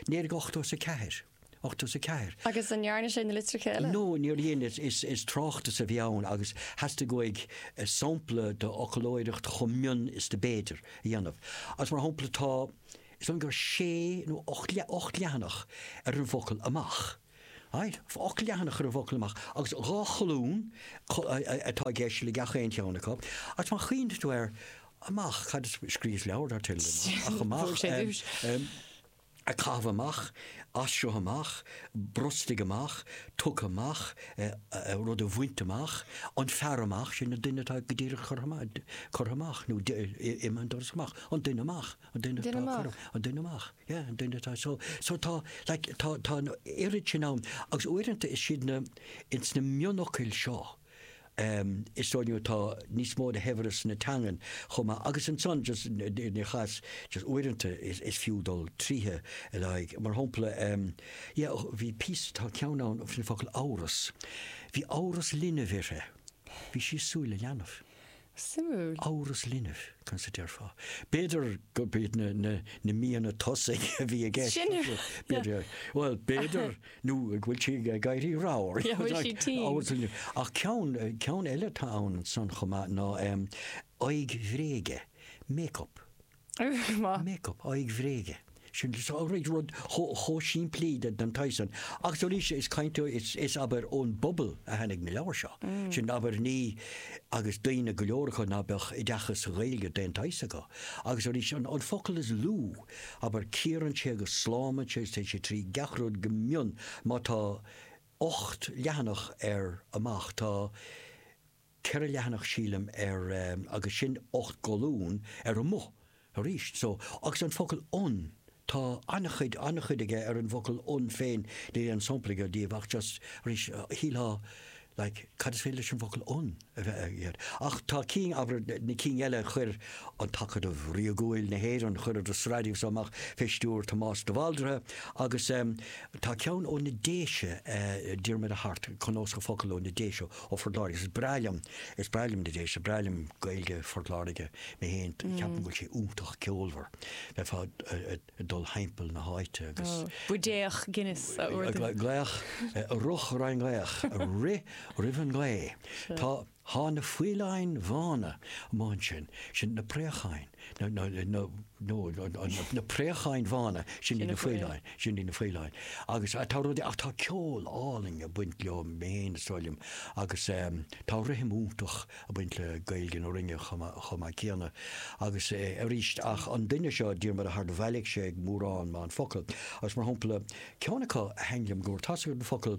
naoi déag ochtó is a ceathair. Ochtó is a ceathair. Agus an ndearna sé na litreacha eile? No, níor dhein is is is tráchtas a bhí ann agus theastaigh uaidh sampla de fhoclóireacht chomh mion is do b'fhéidir a dhéanamh. Agus mar shampla tá, is dóigh liom gur sé nó ocht ocht leathanach ar an bhfocal amach. Ocht leathanach ar an bhfocal amach agus dhá cholún atá i gceist le gach aon cheann acu agus má chuimhníonn tú air, amach, cad is, scríos leabhar dar teideal amach, ach amach, ag caitheamh amach, as seo amach, brostaigh amach, tugtha amach, rud a bhaint amach, an fear amach, sin an duine atá go díreach curtha amach, curtha amach nó imithe an doras amach, an duine amach, an duine atá curtha, an duine amach. Yeah, an duine atá so, so tá, like, tá, tá an oiread sin ann, agus uaireanta is siad na, ins na mionfhocail seo, um, is dóigh liom atá níos mó de shaibhreas na teangan chomh maith, agus ansan just ní chas, just uaireanta is, is fiú dul tríthi le haghaidh, mar shampla, um, yeah, bhí píosa, tá ceann ann an focal amhras, bhí amhras linbh uirthi, bhí sí ag súil le leanbh. Suimiúil. Amhras linbh, conas a déarfá? B'fhéidir gurb iad na míonna tosaigh a bhí i gceist. Bhuel, b'fhéidir nó go bhfuil sí ag éirí ramhar. Ach ceann eile atá ann san chomh maith ná aghaidh bhréige, make-up. Má. Make up, aghaidh bhréige. Sin rud chomh simplí den tsaghas san. Agus arís, is cainteoir, is, abair, ón bpobal a tháinig na leabhair seo. Sin, abair, ní, agus daoine go leor acu ná beadh oideachas sa Ghaeilge d'aon tsaghas acu. Agus arís, an focal is lú, abair, cíorann sé agus slámann sé agus téann sé trí gach rud go mion. Má tá ocht leathanach ar amach, tá. 4 leathanach sílim ar agus sin 8 gcolún ar amuigh arís so agus an focal 'on' tá an-chuid, an-chuid aige ar an bhfocal 'on' féin níl aon sampla aige díobh ach just arís shíltheá like cad is féidir leis an bhfocal 'on' a bheith agat ach tá cinn abair na cinn eile chuir an tAcadamh Ríogúil na hÉireann chuireadar sraith díobh so amach fé stiúir Tomás de Bhaldraithe agus tá ceann ó na Déise Diarmaid Ó hAirt cnuasach focal ó na Déise Ó Phort Láirge. Is breá liom, is breá liom na Déise, breá liom Gaeilge Phort Láirge, mé féin, ceapaim go bhfuil sé iontach ceolmhar, bheifeá ag dul thimpeall na háite agus. buidéal Guinness a ordú. Gaoth, ag rith roimh an ghaoth, ag rith roimh an ghaoth. Tá, thá na faoileáin bhána amuigh ansin, sin na préacháin. Na préacháin bhána, sin iad na faoileáin, sin iad na faoileáin. Agus tá rudaí, ach tá ceol álainn ag baint leo I mean is dóigh liom agus tá rithim iontach ag baint le Gaeilge na Rinne chomh maith céanna. Agus arís, ach an duine seo, Diarmaid Ó hAirt, do bhailigh sé mórán maith focal. Agus mar shampla, ceann acu a thaithin liom go mór, tá 'fhios agat an focal,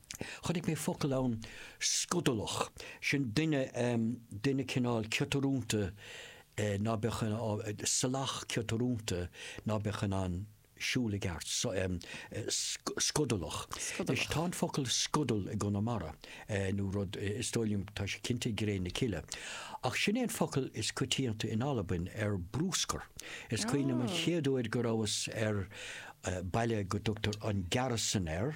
chonaic mé focal ann scudalach, sin duine, duine cineál ciotrúnta ná beadh in ann, salach ciotrúnta ná beadh in ann siúl i gceart, scudalach. Anois tá an focal scudal i gConamara nó rud, is dóigh liom, tá sé cinnte i gCré na Cille. Ach sin é an focal is coitianta in Albain ar bruscar. Is cuimhin liom an chéad uair go rabhas ar baile go dtugtar an Gearasdan air,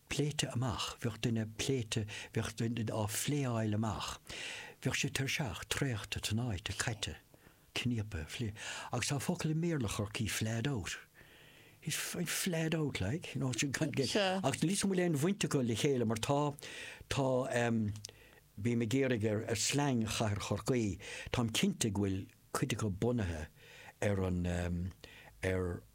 pléite amach, bheadh duine pléite, bheadh duine á phléáil amach, bheadh sé tuirseach, traochta, tnáite, caite, cníopa, fli, agus tá focal i mBéarla Chorcaí flahed out, he's, he's flahed out like, you know, sin gan, gan, Sure. agus níl a fhios agam an bhfuil aon bhaint acu le chéile mar tá, tá em, bím ag iarraidh ar, ar slang chathair Chorcaí, táim cinnte go bhfuil cuid acu bunaithe ar an em, ar,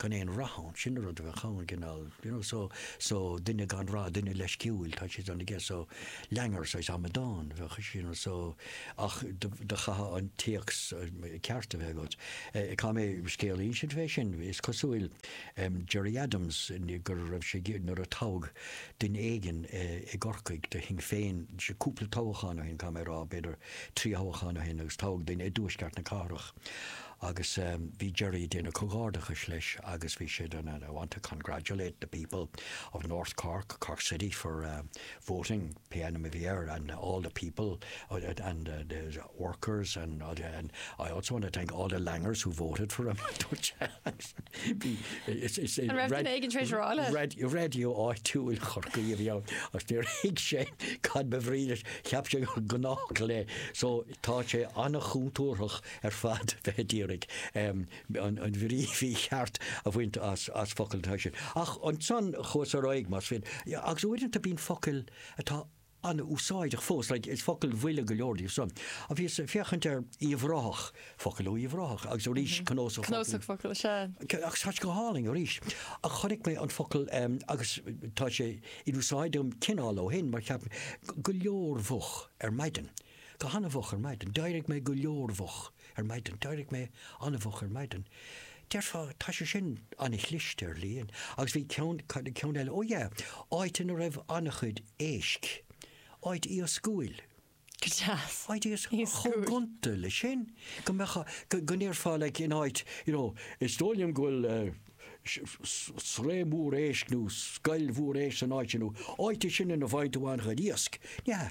gan aon rath ann, sin an rud a bheadh ann, an cineál, you know, so, so duine gan rath, duine leisciúil, tá siad ann aige, so langer, saghas amadán a bheadh ansin, you know, so ach do chaithfeá an téacs ceart a bheith agat. Eh, chuala mé scéal ansin fé sin, is cosúil, em, Gerry Adams, go raibh sé ag, nuair a toghadh duine éigin i gCorcaigh do Shinn Féin, sé, cúpla toghchán ó shin, caithfidh mé a rá, b'fhéidir trí thoghchán ó shin agus toghadh duine i dtuaisceart na cathrach, Agus bhí Gerry ag déanamh comhghairdeachais leis agus bhí sé den and I want to congratulate the people of North Cork, Cork City for voting, pé ainm a bhí air, and all the people and the workers and I also want to thank all the Langers who voted for him, a dúirt sé. An raibh duine éigin tréis rá leis? Radio, radio áitiúil Chorcaí a bhí ann agus níor thuig sé cad ba bhrí leis, cheap sé gur gnáthfhocal é. So tá sé an-chúntúrthach ar fad bheith ag iarraidh an bhrí mhícheart a bhaint as focal den saghas sin. Ach ansan chuas ar aghaidh, más fíor. Agus uaireanta bíonn focail atá an-úsáideach fós, like, is focail bhuile go leor díobh san. Ach bhíos ag féachaint ar Uíbh Ráthach, focal ó Uíbh Ráthach, agus arís cnósach focal. Cnósach focal, sea. Agus tá sé go hálainn arís. Ach chonaic mé an focal, agus tá sé in úsáid agam cineál ó shin, mar cheap mé, go leormhoch ar maidin. Go han-mhoch ar maidin. D'éirigh mé go leormhoch ar maidin. D'éirigh mé an-mhoch ar maidin. Déarfá, tá sé sin an-chliste, dar liom. Agus bhí ceann, cad é ceann eile? Ó, yeah, áit ina raibh an-chuid éisc. Áit iascúil. Go deas. Áit iascúil. Chomh gonta leis sin. Go mbeadh, go ndéarfá, like, in áit, you know, is dóigh liom go bhfuil sraith mhór éisc nó scoil mhór éisc san áit sin nó áit í sin ina bhfaigheann tú an-chuid iasc. Yeah,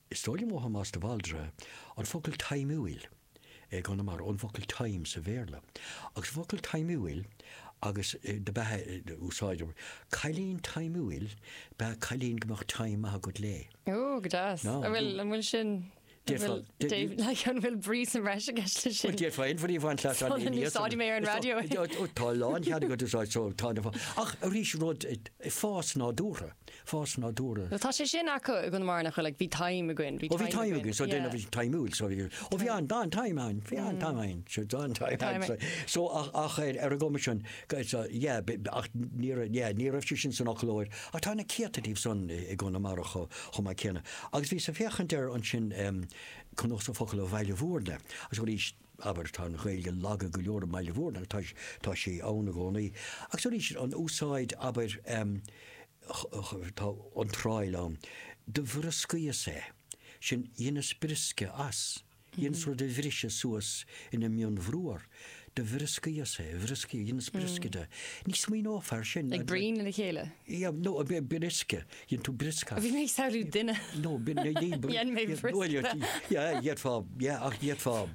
Is dóigh liom ó Thomás de Bhaldraithe an focal taimiúil i gConamara, ón bhfocal time sa Bhéarla. Agus an focal taimiúil agus dob ea an úsáid, cailín taimiúil ab ea cailín go mbeadh time maith agat léi. Oh, go deas. An bhfuil, an bhfuil sin, an bhfuil, like, an bhfuil brí sa mbreis i gceist leis sin? D'fhéadfá aon bhrí a bhaint as an líne iasachta. Úsáidfidh mé é ar an raidió. Tá lánchead agat é a úsáid, so tá an, ach arís rud, fás nádúrtha. Fás nádúrtha. Tá sé sin acu i gConamara nach bhfuil ag. Bhí time againn. Bhí time againn. Bhí time againn. So déanamh bhí taimiúil so bhí. Ó bhí an dá an-time ann. Bhí an-time ann. So tá an-time ann. So ach ar ar an gcuma sin go is yeah ach ní raibh yeah ní raibh sé sin san fhoclóir ach tá na céadta díobh san i gConamara chomh chomh maith céanna. Agus bhíos ag féachaint ar ansin Cnósach Focal ó Bhaile Bhúirne agus arís Abair, tá an Ghaeilge lag go leor i mBaile Mhúirne agus tá sé ann i gcónaí agus arís an úsáid, abair, tá iontráil ann, do bhrioscaíos é, sin, dheineas briosca as, dheineas rud a bhriseadh suas ina mhionbhruar, do bhrioscaíos é, bhrioscaíos, dheineas briosca de, ní smaoineofá ar sin. Ag bruíon lena chéile? Yeah, no, briosca, Dhein tú briosca. Bhí mé ag samhlú duine. No, Dhein mé briosca. Yeah, dhéanfá, yeah, ach dhéanfá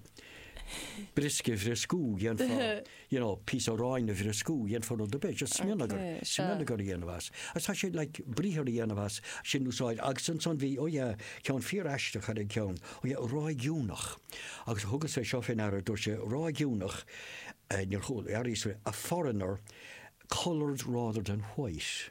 briosca a bhrioscú, dhéanfá, you know, píosa aráin a bhrioscú, dhéanfá rud ar bith, just smionagar, okay, smionagar a dhéanamh as. As tá sé, like, briathar a dhéanamh as, sin úsáid, agus ansan bhí, ó oh, yeah, ceann fíor aisteach ar an ceann, ó oh, yeah, ráigiúnach, agus thugas é seo féin air, dúirt sé, ráigiúnach, uh, níor chúil, a foreigner, coloured rather than white.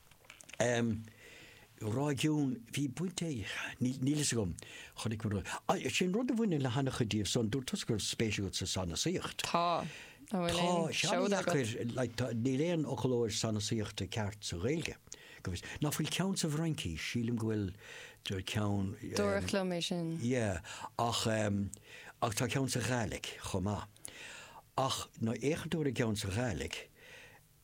Ráigiún, bhí baint ag, níl, níl a fhios agam, chonaic mé rud, á, sin rud a bhaineann le han-chuid díobh san, dúirt tusa go raibh spéis agat sa sanasaíocht. Tá, an bhfuil aon seoda agat? Tá sé deacair, like, tá, níl aon fhoclóir sanasaíochta ceart sa Ghaeilge, go bhfios, ná fuil ceann sa bhFraincís, sílim go bhfuil ceann, em. Dúradh liom é sin. Yeah, ach em, ach tá ceann sa Ghaidhlig chomh maith, ach má fhéachann tú ar an gceann sa Ghaidhlig,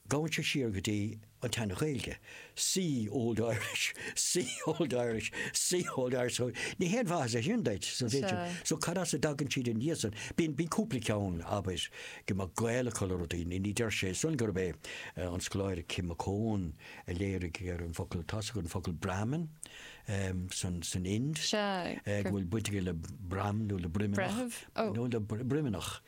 Gabhann sé siar go dtí an tSean-Ghaeilge, see Old Irish, see Old Irish, see Old Irish, so ní haon mhaitheas é sin duit, so b'fhéidir, so cad as a dtagann siad ina dhiaidh san? Bíonn, bíonn cúpla ceann, abair, go mbeadh gaol acu le rudaí, ní, ní deir sé san gurb é an scoláire Kim McCone a léirigh ar an bhfocal, tá's agat an focal Brahmin san, san Ind, go bhfuil baint aige le broim nó le broimneach, nó le broimneach.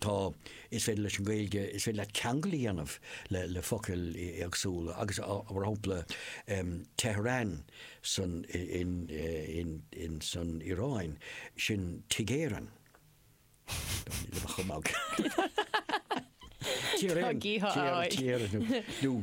Tá. Is féidir leis an Ghaeilge, is féidir leat ceangal a dhéanamh le focail éagsúla agus mar shampla Tehran san in san Iaráin, sin Tigh Éireann. Tá gídh ann. Nó.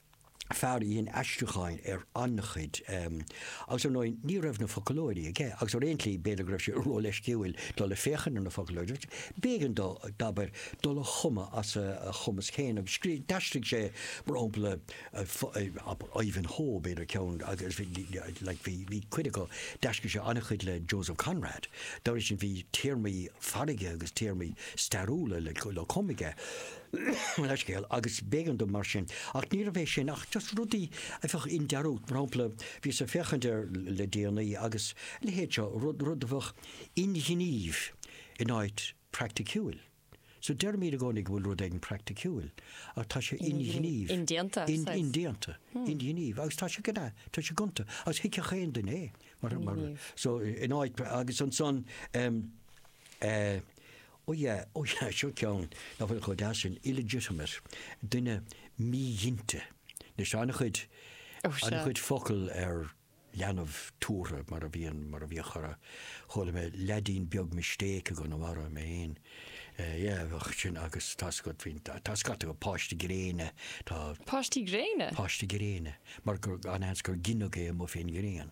fear a dhein aistriúcháin ar an-chuid, agus ar ndóigh ní raibh na foclóirí aige agus ar aon tslí b'fhéidir go raibh sé ró-leisciúil dul ag féachaint ar na foclóirí agus b'éigean dó, abair, dul a chumadh as a chumas féin agus scríobh, d'aistrigh sé mar shampla Ivanhoe, b'fhéidir ceann agus like bhí, bhí cuid acu, d'aistrigh sé an-chuid le Joseph Conrad, dá bhrí sin bhí téarmaí farraige agus téarmaí stairiúla le cumadh aige. leithscéal, agus b'éigean dom mar sin. Ach níorbh é sin ach just rudaí a bheadh i ndearúd. Mar shampla, bhíos ag féachaint air le déanaí agus a leithéid seo, rud, rud a bheadh inghnímh in áit praiticiúil. So deirimid i gcónaí go bhfuil rud éigin praiticiúil, ach tá sé inghnímh. Indéanta, saghas. Indéanta, inghnímh, agus tá sé gna, tá sé gonta, agus thuigfeadh aon duine é. Mar, mar, so in áit agus ansan, eh, Oh yeah, oh yeah, seo ceann nach bhfuil chomh deas sin, illegitimate, duine míghinte. Anois, tá an-chuid, Oh, sure. an-chuid focal ar leanbh tabhartha mar a bhíonn, mar a bhíodh chomh, chuala mé leaidín beag mistake i gConamara, mé fhéin. Eh, yeah, bheadh sin agus tá scat, bhíonn, tá scata acu, páiste gréine, tá, Páistí gréine? páiste gréine, mar gur, an seans gur gineadh é amuigh fén ngrian.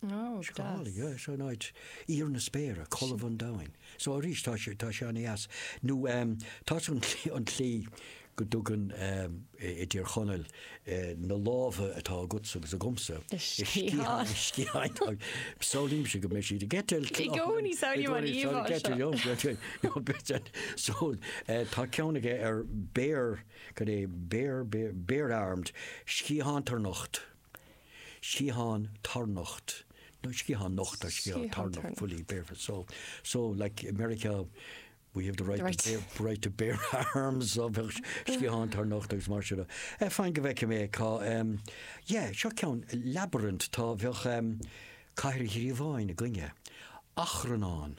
Go hálainn, yeah, so an áit, íor na spéire, colbha an domhain. So arís tá sé, tá sé ana-dheas. Nó ehm, tá san an tslí, an tslí go dtugann ehm i dTír Chonaill eh na lámha atá agatsa agus agamsa, sciatháin, na sciatháin táid, samhlaímse go mbeidh siad ag eitilt, I gcónaí, samhlaím an íomhá seo. So eh tá ceann aige ar bare, cad é, bare, bare, bare-armed, sciathán tarnocht. sciathán tarnocht nó sciathán nocht or sciathán tarnocht fully barefoot so so like i Meiriceá we have the right to bear the right to bear arms so bheadh sciathán tarnocht agus mar sin de. Fan go bhfeicfidh mé cá em yeah seo ceann labyrinth tá bheadh em cathair ghríobháin i gcoinne achrannán.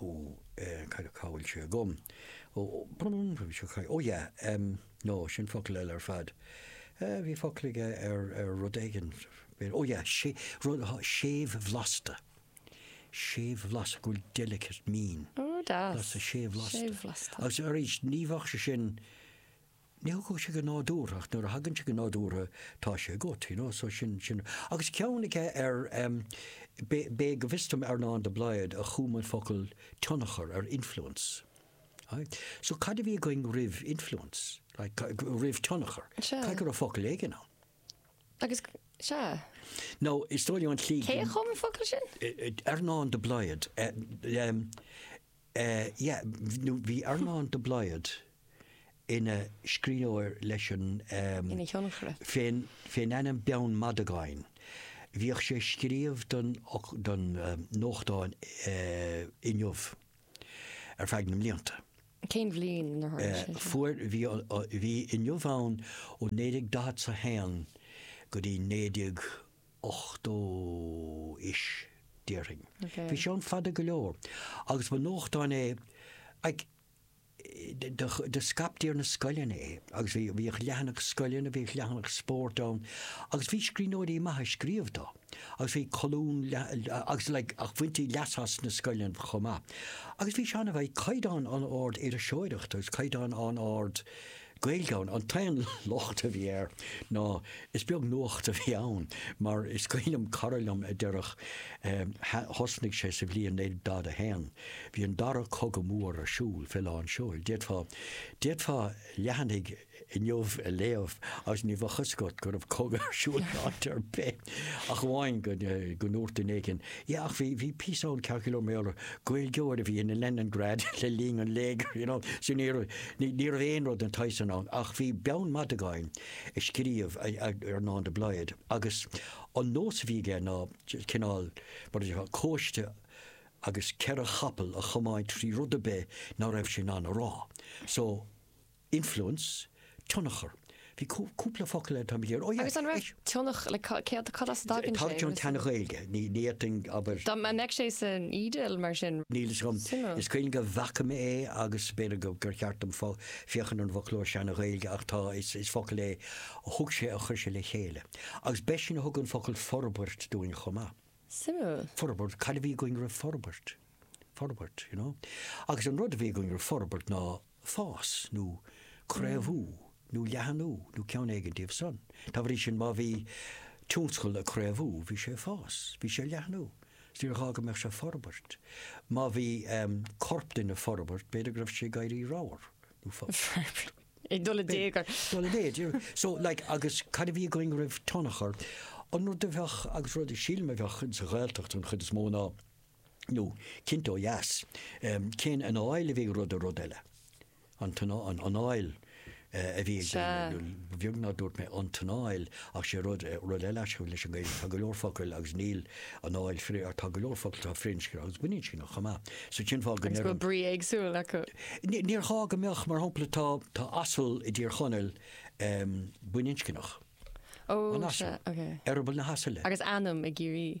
Ó cad cá bhfuil sé agam? Ó ó yeah no sin focal eile ar fad. Bhí focal aige ar rud éigin ó yeah sé rud séimhbhlasta. Séimhbhlasta go bhfuil delicate mín. Ó deas. Séimhbhlasta. Séimhbhlasta. Agus arís ní bheadh sé sin Ní thiocfadh sé go nádúrtha ach nuair a thagann sé go nádúrtha tá sé agat, you know, so sin, sin. Agus ceann aige ar em, b'é go bhfios dom Earnán de Blaghd a chum an focal tionchar ar influence. Aye. So cad a bhí againn roimh influence? Like, roimh tionchar? Sea. Caithfidh go raibh focal éigin ann. Agus, sea. Now, is dóigh liom an tslí. Cé a chum an focal sin? Earnán de Blaghd. Em. Eh yeah, nó bhí Earnán de Blaghd ina scríbhneoir leis an ehm, Ina thionchaire. fén, fén ainm Beann Mhadagáin. Bhíodh sé ag scríobh don, don nuachtán eh Inniu ar feadh na mblianta. Cén bhliain ar tharla sé Eh sin? fuair, bhí, bhí Inniu ann ó naoi déag daichead 's a haon go dtí naoi déag 80 'is, déarfainn. Bhí sé ann fada go leor. Agus ba nuachtán é, like, do scaiptí ar na scoileanna é. Agus bhí, bhíodh leathanach scoileanna, bhíodh leathanach spóirt ann. Agus bhí scríbhneoirí maithe ag scríobh dó. Agus bhí colún leath, agus like, ach bhaintí leas as sna scoileanna chomh maith. Agus bhí sé an-, bhí caighdeán an-ard iriseoireachta, agus caighdeán an-ard Gael ann. An t-aon locht a bhí air ná is beag nuacht a bhí ann mar is cuimhin liom, cara liom a déarfadh thosnaigh sé sa bhliain 1941, bhí an dara cogadh mór ar siúl fé lán seoil. D'fhéadfá, d'fhéadfá leathanaigh inniu a léamh agus ní bheadh fhios agat go raibh cogadh ar siúl in áit ar bith. Ach amháin go ndúirt duine éigin, yeah, ach bhí, bhí píosa ann cheana, go leor mé orthu, Gaeilgeoir a bhí in Leningrad le linn an léigir, you know, so ní raibh, ní raibh aon rud den tsaghas san ann. Ach bhí Beann Mhadagáin ag scríobh Earnán de Blaghd agus an nós a bhí aige ná cineál, mar a déarfá, cóiste agus ceithre chapall a chomáint trí rud ar bith ná raibh sé in ann a rá. So. Influence, tionchar. Bhí cúpla focal eile, táimid ar. Agus an raibh tionchar, like céard, cad as a dtagann sé? Tá ag an tSean-Ghaeilge, ní fhéadfainn, abair. Dá mbeadh sé san eDIL, mar sin. Níl fhios agam. Suimiúil. Is cuimhin liom go bhfaca mé é agus b'fhéidir gur cheart dom féachaint ar an bhfoclóir Sean-Ghaeilge ach tá, is focal é a thug sé, a chuir sé le chéile. Agus b'eisean a thug an focal forbairt dúinn chomh maith. Suimiúil. Forbairt, cad a bhí againn roimh forbairt? Forbairt, you know? Agus an rud a bhí againn roimh forbairt ná. fás nó craobhú nó leathnú nó ceann éigin díobh san. Dá bhrí sin, má bhí tionscal ag craobhú, bhí sé ag fás, bhí sé ag leathnú, is níor ghá go mbeadh sé ag forbairt. Má bhí corp duine ag forbairt, b'fhéidir go raibh sé ag éirí ramhar nó. Ag dul i dtéagar. Ag dul i méid. So, like, agus cad a bhí againn roimh tionchar? An rud a bheadh, agus rud a shílim a bheadh sa Ghaeltacht an chuid is mó ná, nó cinnte ó dheas. Cén anáil a bhí ag rud ar rud eile? An anáil a bhí ag daoine, nó beag nár dúirt mé an t-anáil ach sé rud rud eile leis an Ghaeilge. Tá go leor focal agus níl anáil tá go leor focal atá firinscneach agus baininscneach chomh maith. So cén fáth go mbeadh brí éagsúil acu? Níor ghá go mbeadh, mar shampla tá tá asal i dTír Chonaill baininscneach. Ó an asal. Eireaball na hasaile. Agus ainm i gCiarraí.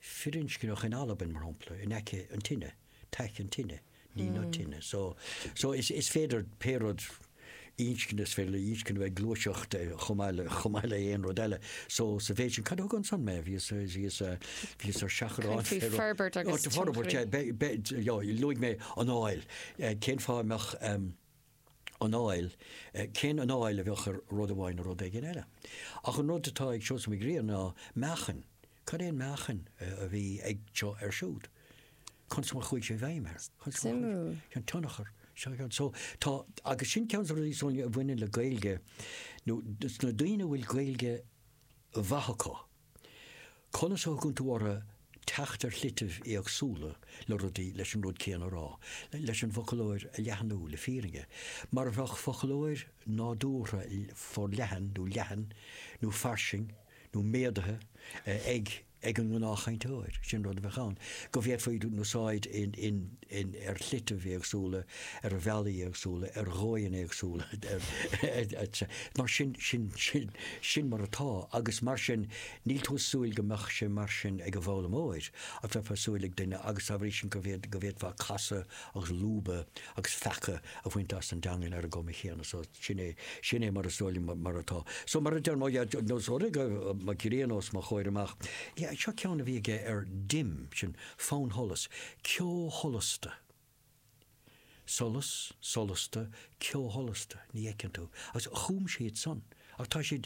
firinscneach in Albain, mar shampla, in aice an tine, taic an tine, ní na tine. So, so is, is féidir pé rud inscne, is féidir le inscne bheith ag gluaiseacht eh, chomh maith le- chomh maith le aon rud eile. So, sa mhéid sin, cad a thug ansan mé? Bhíos, eh, bhíos, eh, bhíos ar seachrán Caint faoi forbairt agus Áit forbairt, tionchairí. eh, be- be- yeah, luaigh mé anáil. Eh, Cén fáth a mbeadh, em, anáil, cén anáil a bheadh ar rud amháin ar rud éigin eile. Ach an rud atá ag Seosamh Mac Grianna ná meáchain. Cad é an meáchain a bhí ag seo air siúd? Conas mar a chuaigh sé i bhfeidhm air? Suimiúil. An tionchar. So, tá, agus sin ceann de na rudaí, Sonia, a bhaineann le Gaeilge sna daoine a bhfuil Gaeilge mhaith acu. Conas a thugann tú orthu teacht ar shlite éagsúla le rudaí, leis an rud céanna a rá, leis an bhfoclóir a leathnú, le fírinne, mar a bheadh foclóir nádúrtha forleathan nó leathan nó fairsing nó méadaithe ag an ngnáthchainteoir, sin rud a bheadh ann, go bhféadfaí úsáid in. in, ar shlite éagsúla, ar bhealaí éagsúla, ar dhóigheanna éagsúla, etc. Mar sin, sin, sin, sin mar atá agus mar sin níl tú ag súil go mbeadh sé mar sin ag an bhfoghlaimeoir ach bheifeá ag súil ag duine agus dá bhrí sin go bhféad, go bhféadfá casadh agus lúbadh agus feacadh a bhaint as an dteangain ar an gcuma chéanna. So, sin é, sin é mar is dóigh liom mar atá. So, mar a deir, nós, óir go raibh mo ghrian os mo chomhair amach, yeah, seo ceann a bhí aige ardín, sin, Fannsholas, ceo sholasta. Solas, solasta, ceo sholasta, ní fheiceann tú. Agus chum siad san. Ach tá siad,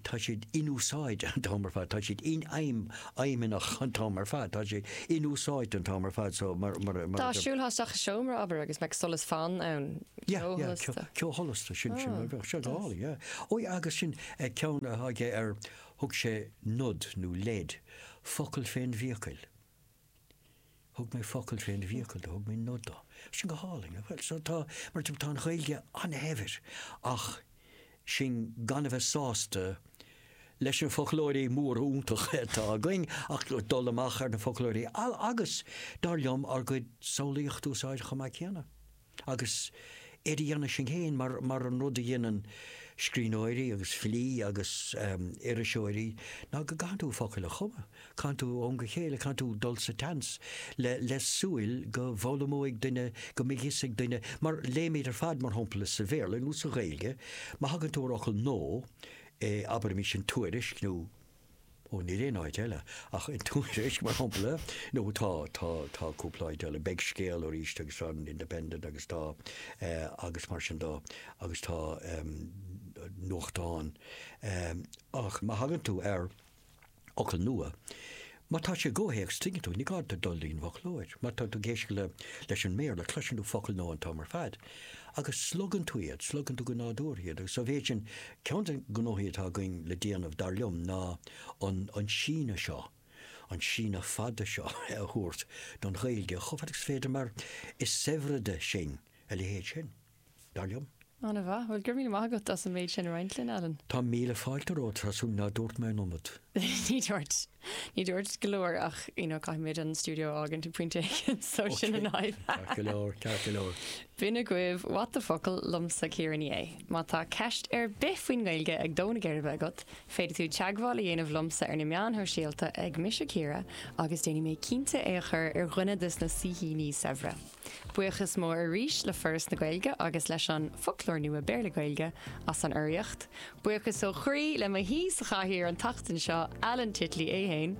tá siad inúsáidte an t-am ar fad, tá siad infheidhm, fheidhmeannach an t-am ar fad, tá siad inúsáidte an t-am ar fad so mar, mar a, mar Dá a. siúlthá isteach i seomra, abair, agus mbeadh solas fann ann, Yeah, ceo yeah, sholasta. ceo sholasta, sin, sin, bheadh sé go hálainn, yeah. Ó yeah, agus sin ceann atá aige ar Thug sé nod nó leid, focal fén bhfiacail. Thug mé focal fén bhfiacail do, thug mé nod do. Sin go hálainn, nach bhfuil? So tá, mar adeirim, tá an Ghaeilge an-shaibhir ach sinn gan a bheith sásta leis na foclóirí móra iontacha atá againn ach dul amach ar na foclóirí agus, dar liom, ár gcuid samhlaíocht a úsáid chomh maith céanna. Agus iad a dhéanamh sinn féin mar an rud a dhéanann scríbhneoirí agus filí agus iriseoirí ná go gcaitheann tú focail a chumadh, caitheann tú ó am go chéile, caitheann tú dul sa tseans le súil go bhfoghlaimeoidh duine, go mbeidh fhios ag duine, mar léimid ar fad mar shampla sa Bhéarla nó sa Ghaeilge má thagann tú ar fhocal nua abair insan Tuairisc nó. Ó, níl aon áit eile ach an Tuairisc, mar shampla. Nó tá, tá, tá cúpla áit eile. Beidh Scéal arís agus tá an Independent agus tá, eh, agus mar sin de. Agus tá, em, nuachtáin. Em, ach má thagann tú ar fhocal nua, má tá sé i gcomhthéacs tuigeann tú, ní gá duit dul dtí'n bhfoclóir. Má tá tú ag éisteacht le, leis an mBéarla, cloiseann tú focal nua an t-am ar fad. Agus slogann tú iad, slogann tú go nádúrtha iad agus sa mhéid sin, ceann de na gnóthaí atá againn le déanamh, dar liom, ná an síneadh seo, an síneadh fada seo a thabhairt don Ghaeilge chomh fada agus is féidir mar is saibhrede sinn a leithéid sin, dar liom. An-mhaith. Bhuel, go raibh míle maith agat as an méid sin a roinnt linn, Alan. Tá míle fáilte romhat, tá súil nár dúirt mé an iomad? Ní dúirt. Ní dúirt go leor ach you know caithfimid an stiúideo a fhágaint ag pointe éigin so sin an fhadhb. Ceart go leor, ceart go leor. B'in agaibh What the focal liomsa Ciara Ní É. Má tá ceist ar bith faoin nGaeilge ag dó na geirbe agat, féadfaidh tú teagmháil a dhéanamh liomsa ar na meáin shóisialta ag Mise Ciara agus déanfaidh mé cinnte é a chur ar dhuine de sna saoithíní saibhre. Buíochas mór arís le Foras na Gaeilge agus leis an Foclóir Nua Béarla-Gaeilge as an urraíocht. Buíochas ó chroí le mo shaoi sa chathaoir an tseachtain seo, Alan Titley é fhéin,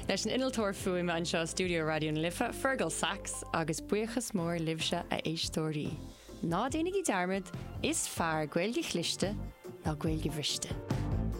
leis an innealtóir fuaime anseo i stiúideo Raidió na Life, Fergal Sachs, agus buíochas mór libhse a éisteoirí. Ná déanaigí dearmad, is fearr Gaeilge chliste ná Gaeilge bhriste!